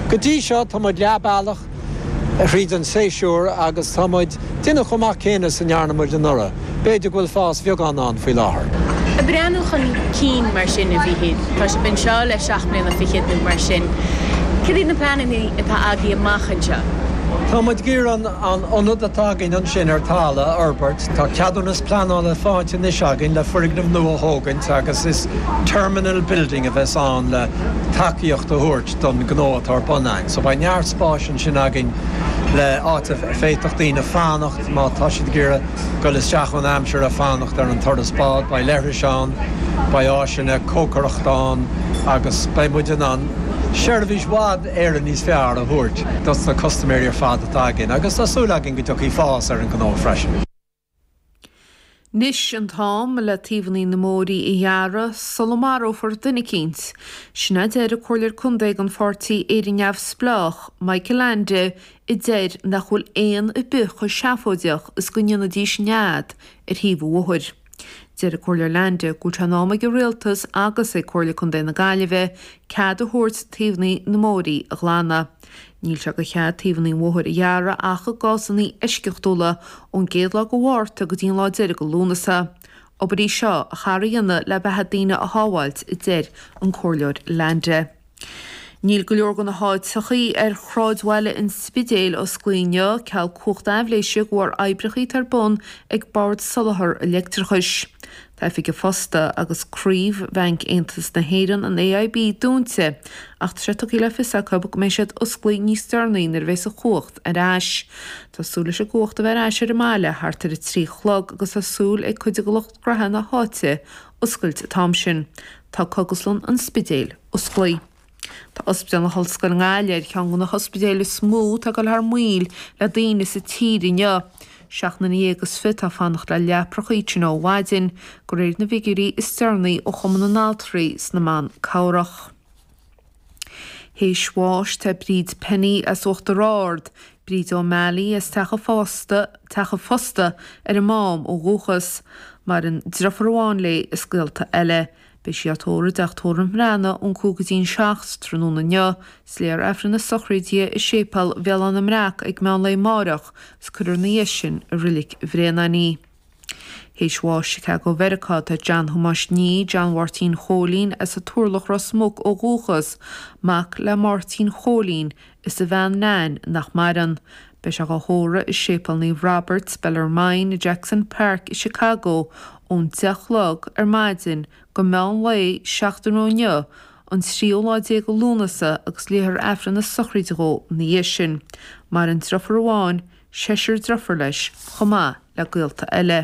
Go dtí seo tá muid leath bealach thríd an séasúr agus tá muid déanamh chomh maith céanna is a ndearna muid anuraidh, b'fhéidir go bhfuil fás bheagán ann faoi láthair. Ag breathnú chun cinn mar sin a Mhichíl. Tá sibh anseo le seacht mbliana fichead nó mar sin. Cad iad na pleanannaí atá agaibh amach anseo? Tá muid ag iarraidh an ionad atá againn ansin ar Talla a fhorbairt. Tá ceadúnas pleanála fáighte anois againn le foirgneamh nua a thógaint agus is 'terminal building' a bheas ann le. tacaíocht a thabhairt don gnó atá ar bun againn. So beidh neart spáis ansin againn le áit a bhféadfadh daoine fanacht má tá siad ag iarraidh goil isteach ón aimsir ag fanacht ar an turas bád. Beidh leithris ann, beidh áiseanna cócaireachta ann agus beidh muid in ann seirbhís i bhfad Éireann níos fearr a thabhairt dos na custaiméirí ar fad atá againn agus tá súil againn go dtiocfaidh fás ar an gnó freisin. 'Nis an t-am le taobhannaí na mbóirí a ghearradh sula marófar duine eicínt. Sin a deir an Comhairleoir Contae ag an Pháirtí Éire Neamhspleách, Michael Leainde a deir nach bhfuil éin ar bith chomh seafóideach is go ndéanfaidís nead ar thaobh an bhóthair. Deir an Comhairleoir Leainde gur in am ag an Rialtas agus ag Comhairle Contae na Gaillimhe cead a thabhairt taobhannaí na mbóirí a ghlanadh. Níl sé de chead taobhanna an bhóthair a ghearradh ach i gcásanna eisceachtúla, ón gcéad lá de Mhárta go dtí an lá deiridh de Lúnasa. Obair í seo ar cheart a dhéanamh le beatha daoine a shábháilt, a deir an Comhairleoir Leainde. Níl go leor de na háiteachaí ar shráidbhaile an Spidéil osclaí inniu, ceal cumhacht aibhléise de bharr oibreachaí atá ar bun ag Bord Soláthair an Leictreachais. Oifig an Phosta agus Craobh Bhanc Aontas na hÉireann, an AIB, dúinte, ach tá sé tugtha le fios acu go mbeidh siad osclaí níos deireanaí nuair a bheas an chumhacht ar ais. Tá súil leis an gcumhacht a bheith ar ais ar an mbaile thart ar a trí a chlog agus tá súil ag cuid de lucht graithe na háite oscailt an t-am sin. Tá Cógaslann an Spidéil osclaí. Tá Ospidéal na hOllscoile i nGaillimh ar cheann de na hospidéil is mó atá ag dul thar maoil le daoine sa tír inniu. Seacht nduine dhéag is fiche atá ag fanacht le leaprachaí inti ó mhaidin, de réir na bhfigiúirí is deireanaí ó Chumann na nAltraí is na mBan Cabhrach. Théis bháis tá Bríd Penny as Uachtar Ard, Bríd O'Malley as Teach a' Phosta, Teach a' Phosta ar an Mám ó dhúchas. Maireann driofúr amháin léi is gaolta eile. Beidh sí á tórramh i dTeach Tórraimh Bhreathnaigh ón cúig go dtí an seacht tráthnóna inniu. Is léifear Aifreann na Sochraide i Séipéal Bhéal Átha na mBreac ag meán lae máireach is cuirfear na dhiaidh sin i Reilig Bhréanainn í. Théis bháis i Chicago Mheiriceá tá John Thomáis Nee, John Mháirtín Chóilín, as an Turlach, Ros Muc, ó dhúchas, mac le Máirtín Chóilín, Is a bhean Nain, nach maireann. Beidh sé dhá thórramh i Séipéal Naomh Robert Bellarmine i Jackson Park i Chicago ón deich chlog ar maidin go meán lae seachtain ó inniu, an tríú lá déag de Lúnasa agus léifear Aifreann na sochraide dhó ina dhiaidh sin. Maireann driofúr amháin, seisear driothár leis, chomh maith le gaolta eile.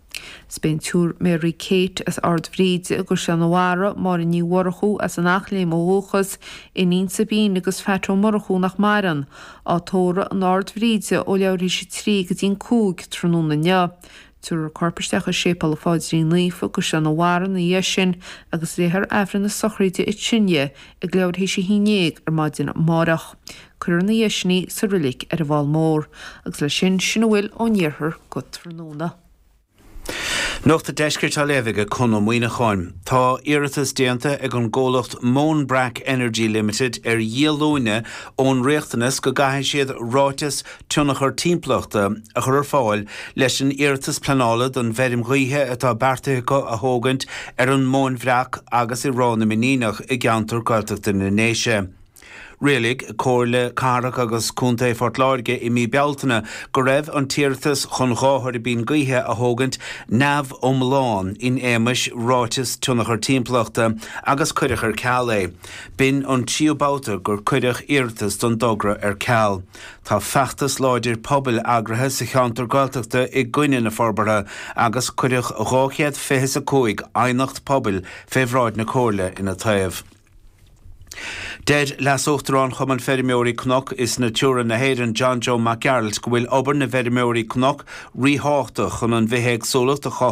Is beidh an tSiúr Mary Kate as Ard Bhríde i gCaisleán an Bharraigh, Máire Ní Mhurchú as an Eachléim ó dhúchas, iníon Sabine agus Phat Ó Murchú nach maireann, á tórramh in Ard Bhríde ó leathuair tar éis a trí go dtí'n cúig tráthnóna inniu. Tiúrfar a corp isteach i Séipéal an Phaidrín Naofa i gCaisleán an Bharraigh ina dhiaidh sin agus léifear Aifreann na sochraide dithe ag leathuair tar éis a haon déag ar maidin amáireach. Cuirfear ina dhiaidh sin í sa roilig ar an bhFál Mór agus leis sin, sin a bhfuil ó'n Iarthar go tráthnóna. Nuacht an Deiscirt á léamh aige Conn Ó Muíneacháin. Tá iarratas déanta ag an gcomhlacht Moanbrack Energy Limited ar dhíolúine ón riachtanas go gcaithfidh siad Ráiteas Tionchar Timpeallachta a chur ar fáil leis an iarratas pleanála don bhfeirm ghaoithe atá beartaithe acu a thógaint ar an Móinbhreac agus i Ráth na Miníneach i gceantar Gaeltachta na nDéise. Rialaigh Comhairle Cathrach agus Contae Phort Láirge i mí Bealtaine go raibh an t-iarratas chun dhá thuirbín gaoithe a thógaint neamhiomlán in éagmais Ráiteas Tionchar Timpeallachta agus cuireadh ar ceal é. B'in an tríú babhta gur cuireadh iarratas don dtogra ar ceal. Tá feachtas láidir pobail eagraithe sa cheantar Gaeltachta i gcoinne na forbartha agus cuireadh dhá chéad fiche is a cúig aighneacht pobail fé bhráid na Comhairle ina taobh. Deir Leas-Uachtarán Chumann Feirmeoirí Cnoc is Natura na hÉireann, John Joe Mac Gearailt, go bhfuil obair na bhfeirmeoirí cnoc ríthábhachtach chun an bhithéagsúlacht a chothú,